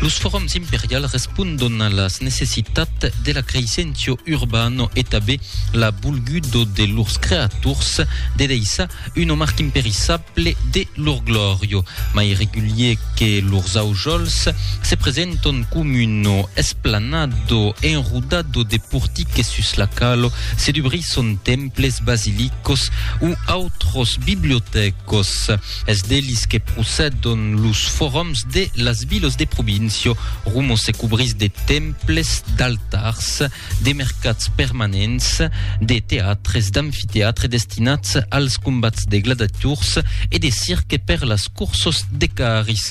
Los forums imperials respondon a las necessitats de la creissencio urbano e tabé la bolgudo de lors creators de deissar una marca imperissable de lor glòria. Mai regulier que lors aujols, se presentan com una esplanado enrodado de portiques sus la calo se dubrisson temples, basilicos o autros bibliotècos. Es d'elis que procedon los forums de las vilos de provincio, rumos se cobrís de temples, d'altars, de mercats permanents, de teatres, d'amfiteatre destinats als combats de gladiators e de cirque per las cursos de carris.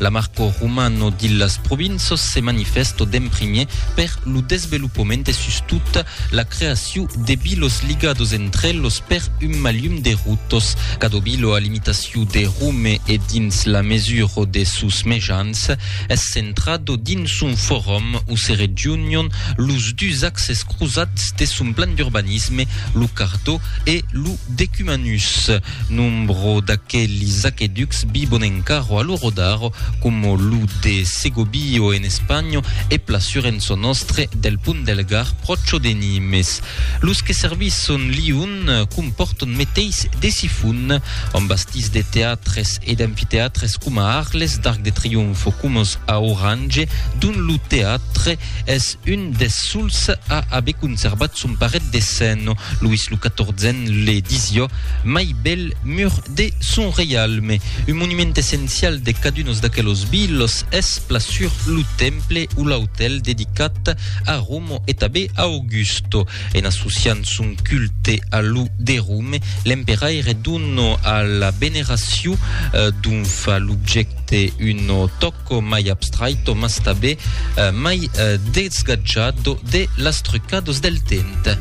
La marco romano dillas provinços se manifesto d'en primier per lo desvelopament e sustot la creaciu de bilos ligados entre elos per un malium de rutos. Cado bilo a l'imitaciu de Rome e dins la mesuro de sos mejans es centrado dins son forum o se regiunion los dus axes crosats de son plan d'urbanisme, lo cardó e lo decumanus. Nombro d'aquelis aqueducs vivon encaro a lo Rodaro, coma lo de Segobbio en Espanha e pla sur en çò nòstre del Pont del Gard pròcho de Nimes. Los que servisson Lion compòrton meteis de sifon, ont bastís de teatres e d'amfiteatres coma Arles, d'Arc de Trionfo coma a Orange, dont lo teatre Es un des sols a aver conservat son paret de sen, Louis lo XIVen le disió mai bèl mur de son reialme. Un monument essencial de cadunos d'aquelos vilos es plan sur lo temple o l'autèl dedicat a Romo e tanben a Augusto. En associant son culte a lo de Rome, l'emperaire dona a la veneracion dont fa l'objècte un tòc Quò mai abstrait o mas tabé mai desgatjat do de las trucados del temps.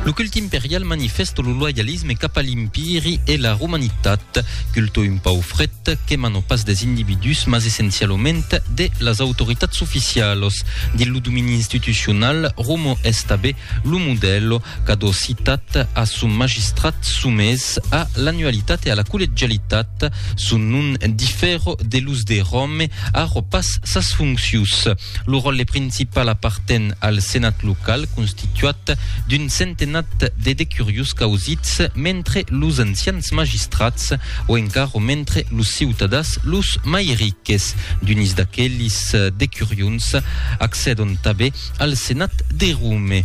Lo culte imperial manifèsto lo loyalisme cap a l'Empiri e la Romanitat. Culto un pauc fret, quema non pas des individús mas essencialament de las autoritats oficialas dins lo domini institucional romo es tabé lo modèl qu'a do citat a son magistrat somés a l'anualitat e a la collegialitat son non difèra de los de Ròme a ro pas sas foncius Lo ròtle principal aparten al senat local constituat d'un centenat de decuriós causits mentre los ancians magistrats o encara mentre los ciutadans los mai riques. D'unis d'aquelis decurions accèdon tanben al senat de Rome.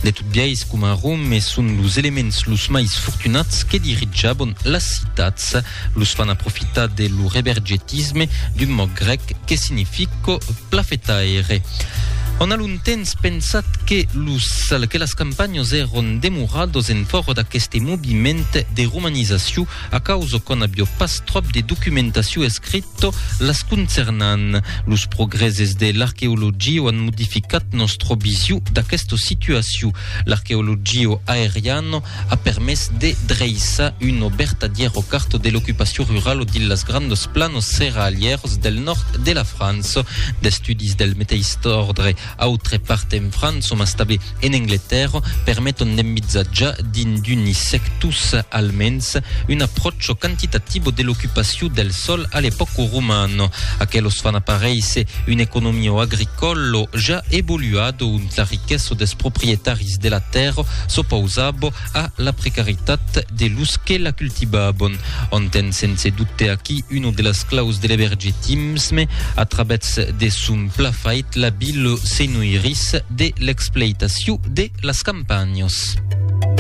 De tot biais, coma a Rome, son los elements los mai fortunats que dirijabon las citats, Los fan aprofitar de lo rebergetisme d'un mot grèc que significo plafetaire. On a longtemps pensat que, los, que las campanhos èron demorados en fòro d'aqueste moviment de romanizacion a causa qu'on avió pas tròp de documentacion escrita las concernant. Los progrèses de l'arqueologia an modificat nòstra vision d'aquesta situacion. L'arqueologia aeriana a permés de dreissar una vertadièra carta de l'ocupacion rurala dins las grands planos serralièrs del nòrd de la França. D'estudis del meteis òrdre autre part en França, mas tanben en Angletèrra, permeton d'envisatjar dins d'unis sectors almens un apròchi quantitatiu de l'ocupacion del sòl a l'epòca romana. Aquelos fan aparéisser una economia agricòla ja evoluada ont la riquesa dels proprietaris de la tèrra S'opausabo a la precaritat de los que la cultivabon. On ten sense dubte aquí uno de las claus de l'ebergetisme a travèths de son pla fait la ville se noirís de l'expleitaciu de las campanhas.